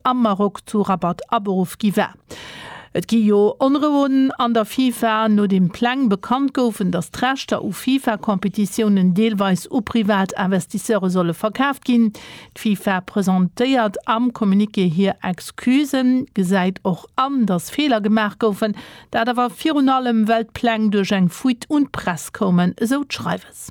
am Maroc zu Rabat aberuff gi war. Et gi jo Onrouen an der FIFA, nodeem Pläng bekannt goufen, datt d'Rechter u FIFA-Competitiounen deelweis u privat Investisseure solle verkaaft ginn. D'FIFA presentéiert am Communiqué hir Excusen, gesäit och an, datt Feeler gemaach goufen, dat awer virun allem, well d'Pläng duerch eng Fuite un d'Press koumen, esou d'Schreiwes.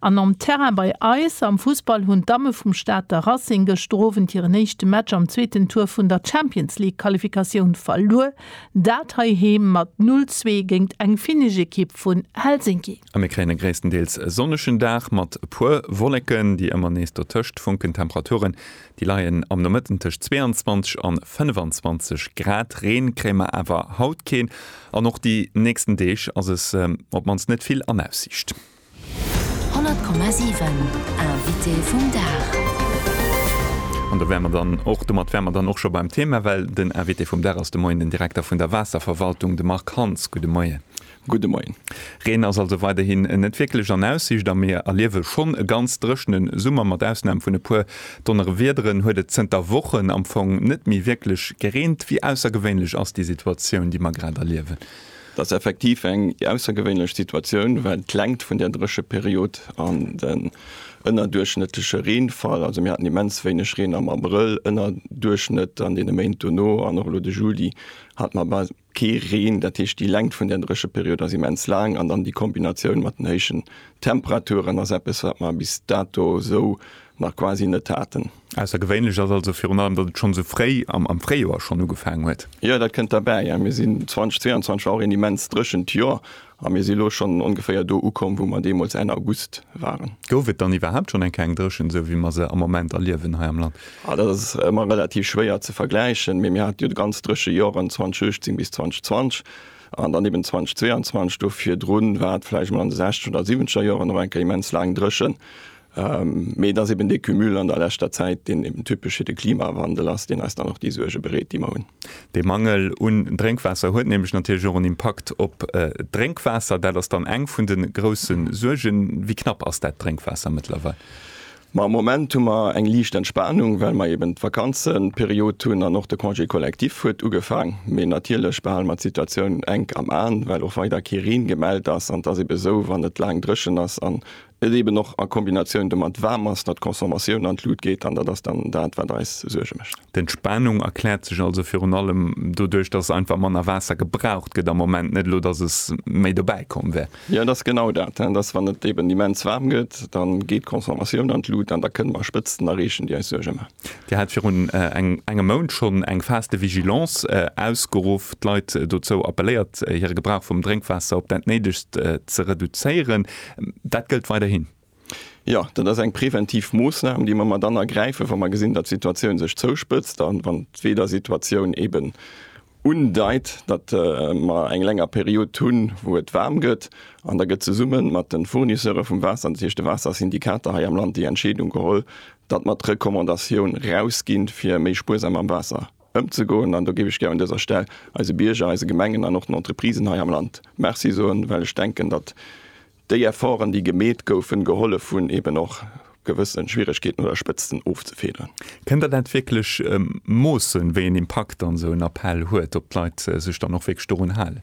An nom Terrain bei eis am Fussball hunn d'Damme vum Stater Racing gëschter Owend hiren éischte Match am zweeten Tour vun der Champions League Qualifikatioun verluer, dat heiheem mat 0, 2 géingt eng finnesch Ekipp vun Helsinki. A mir kréien e gréisstendeels sonnegen Dag mat e puer Wolleken, déi ëmmer nees dotëscht funken. D'Temperature Déi leien am Nomëtten tëscht 22 an 25 Grad. Reen kréie mer awer haut keen an och déi nächsten Deeg ass es op d'mannst net vill an Aussiicht. 100,7 Invité vum Dag. An do wäre mer dann och, domat wäre mer dann och scho beim Thema, well den Invité vum Dag ass de Moien den Direkter vun der Waasserverwaltung, de Marc Hans. Gudde Moien. Gudde Moien. Reen ass also weiderhin net wierklech an Aussicht a mir erliewe schonn e ganz dréchene Summer. Mat Ausnam vun e puer Donnerewiederen huet et zënter Wochen am Fong net méi wierklech gereent. Wéi aussergewéinlech ass déi Situatioun, déi mer grad erliewen? Et ass effektiv eng aussergewéinlech Situatioun, well d'Längt vun där Drécheperiod an den ënnerduerchschnëttleche Reenfall, also mir haten immens wéineg Reen am Abrëll, Ënnerduerchschnëtt an deene Méint dono an och elo de Juli hat mer Kee Reen, dat heescht déi Längt vun der Drécheperiod ass immens laang an dann déi Kombinatioun mat den héijen Temperaturen ass eppes, wat mer bis dato esou nach quasi net haten. Aussergewéinlech ass also virun allem, datt et schonn esou fréi am Fréijoer schonn ugefaangen huet. Jo, dat kënnt derbäi. Mir sinn 2022 war och een immens dréchent Joer A mir si lo schonn ongeféier do ukomm, wou mer deemools Enn August waren. Gouf et dann iwwerhaapt schonn eng keng Dréchent, esou wéi mer se am Moment erliewen hei am Land? Ah, dat ass ëmmer relativ schwéier ze vergläichen, mee mir hate jo ganz dréche Joren 2018 bis 2020 an dann eben 2022. Do virdrun war et vläicht mol an de sechzeger oder siwwenzeger Joren och eng Kéier immens laang dréchen. Mee et ass eben dee Cumul an der leschter Zäit, deen eben typesch fir de Klimawandel ass, deen eis dann och déi Suerge bereet, déi mer hunn. De Mangel un Drénkwaasser huet nämlech natierlech och en Impakt op d'Drénkwaasser. Dat ass dann eng vun de grousse Suergen. Wéi knapp ass dat Drénkwaasser mëttlerweil? Ma am Moment hu mer eng liicht Entspanung, well mer eben d'Vakanzeperiod hunn an och de Congé collectif huet ugefaang. Mee natierlech behale mer d'Situatioun enk am Aen, well och weider kee Reen gemellt ass. An et ass eben esou, wann et laang dréchen ass an Et eben och a Kombinatioun domat waarm ass, datt d'Consommatioun an d'Lut geet an dat ass dann dat, wat eis Suerge mécht. D'Entspanung erkläert sech also virun allem doduerch, datt einfach manner Waasser gebraucht gëtt am Moment, net elo, datt es méi dobäi komm wär. Jo, et ass genau dat, datt wann et eben immens waarm gëtt, da geet d'Consommatioun an d'Lut an da kënne mer Spëtzten erreechen, déi eis Suerge maachen. Dir hat virun engem Mount schonn eng Phase de vigilance ausgeruff, d'Leit dozou appelléiert, hire Gebrauch vum Drénkwaasser op dat Néidegst ze reduzéieren. Dat gëllt weiderhin? Jo, dat ass eng preventiv Moossnam, déi mer mat dann ergräifen, wa mer gesinn, datt d'Situatioun sech zouspëtzt a wann d'Weedersituatioun eeben undeit, datt mer eng länger Period hunn, wou et waarm gëtt, an da gëtt zesumme mat de Fournisseure vum Waasser, dat heescht de Waassersyndikater hei am Land, déi Entscheedung geholl, datt mer d'Recommandatioun rausginn, fir méi spuersam mam Waasser ëmzegoen. An do géif ech gär un dëser Stell eise Bierger, eise Gemengen an och den Entreprisen hei am Land Merci soen, well ech denken, datt Déi Efforten, déi gemeet goufen, gehollef hunn, eben och gewësse Schwieregkeeten oder Spëtzten ofzefedern. Kënnt Der dat wierklech moossen, wéi en Impakt dann esou en Appell huet, ob d'Leit sech dann och wierklech dorun halen?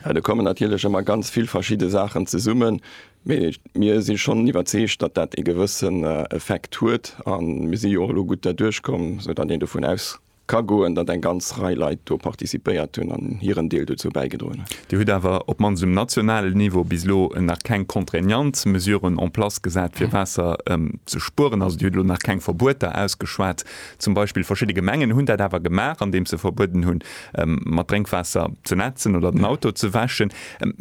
Jo, do kommen natierlech ëmmer ganz vill verschidde Saachen zesummen. Mee mir si schonn iwwerzeegt, datt dat ee gewëssen Effekt huet. A mir si jo och elo gutt derduerch komm, soudatt een dovun aus. Ka goen, datt eng ganz Rei Leit do participéiert hunn an hiren Deel dozou bäigedroen hunn. Dir hutt awer, op d'mannst um nationalen Niveau, bis elo nach keng contraignant Mesuren en place gesat, fir Waasser ze spueren. Also Dir hutt elo nach keng Verbueter ausgeschwat. Zum Beispill verschidde Gemengen hunn dat awer gemaach, andeems se verbueden hunn, mat Drénkwaasser ze nätzen oder den Auto ze wäschen.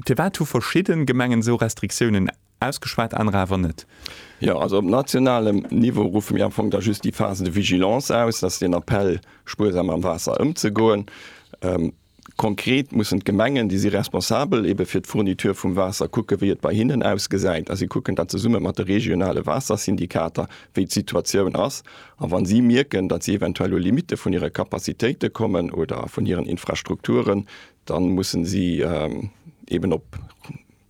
Firwat hu verschidde Gemengen esou Restriktiounen Ausgeschwat, anerer awer net. Jo, also op nationalem Niveau ruffe mir am Fong da just déi Phase de vigilance aus, dass den Appell, spuersam mam Waasser ëmzegoen. Konkret mussen d'Gemengen, déi si responsabel ebe fir d'Fourniture vum Waasser, kucke wéi et bei hinnen ausgesäit a si kucken da zesumme mat de regionale Waassersyndikater, wéi d'Situatioun ass. A wa si mierken, datt si eventuell u Limitte vun hire Capacitéite kommen oder vun hiren Infrastrukturen, da musse si eeben op.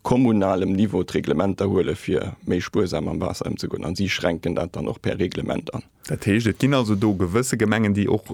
kommunalem Niveau d'Reglementer huele fir méi spuersam mam Waasser ëmzegoen, a si schränken dat dann och per Reglement an. Dat heescht, et ginn also do gewësse Gemengen, déi och